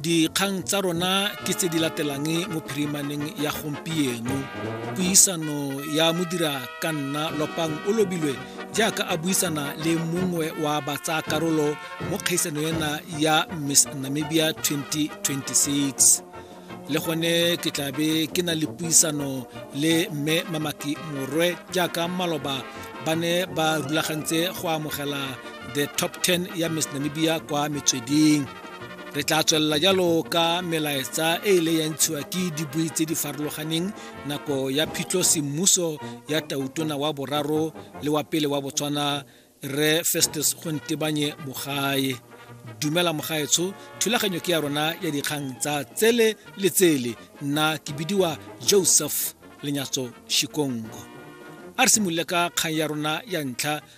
Dikgang tsa rona ke tse di latelang mo phirimaneng ya gompieno. Puisano ya modira ka nna Lopang o lobilwe jaaka a buisana le mongwe wa batsaa karolo mo kgaisano ena ya Miss Namibia 2026. Le gone ke tla be ke na le puisano le Mme Mamaki Morwe jaaka maloba ba ne ba rulagantse go amogela the top 10 ya Miss Namibia kwa metsweding. re tla tswelela jalo ka melaetsa e ile ya ntshiwa ke dibui tse di farologaneng nako ya phitlho semmuso ya tautona wa boraro le wa pele wa botswana re festus go ntebanye bogae dumela mogaetsho thulaganyo ke ya rona ya dikgang tsa tsele le tsele nna ke bidiwa joseph lenyatso shikongo a re simolole ka kgang ya rona ya ntlha